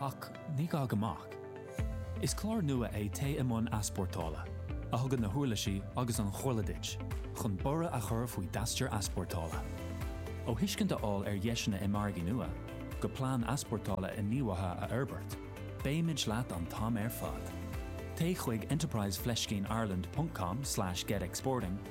Ach ní gá go mbeadh. Is clár nua é Téigh i mBun Easpórtála, a thugann na huirlisí agus an chomhairle duit chun borradh a chur faoi d'aistear easpórtála. Ó thuiscint a fháil ar dheiseanna i margaí nua, go plean easpórtála inghníomhaithe a fhorbairt, beimid leat an t-am ar fad. Téigh chuig enterprise fleiscín ireland ponc com slash get exporting,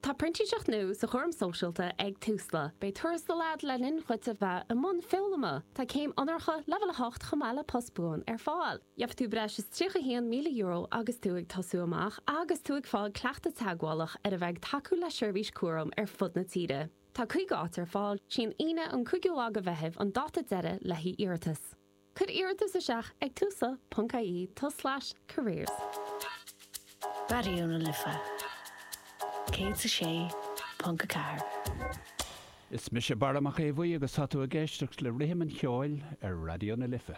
Tá printíseacht nua sa chúram sóisialta ag Tusla. Beidh tuarastal agat le linn dhuit a bheith i mbun foghlama. Tá céim onóracha leibhéal 8 chomh maith le post buan ar fáil. Gheobhaidh tú breis is €31,000 agus tú ag tosú amach agus tú ag fáil cleachtadh teagmhálach ar a bheith ag tacú le seirbhísí cúraim ar fud na tíre. Tá 50 áit ar fáil. Is í an Aoine an 5ú lá de Mheitheamh an dáta deiridh le haghaidh iarratas. Cuir iarratas isteach ag tusla ponc IE tulslais careers. Raidió na Life 106.4. Is mise Barra Mac Aodh Bhuí agus tá tú ag éisteacht le rithim an cheoil ar Raidió na Life.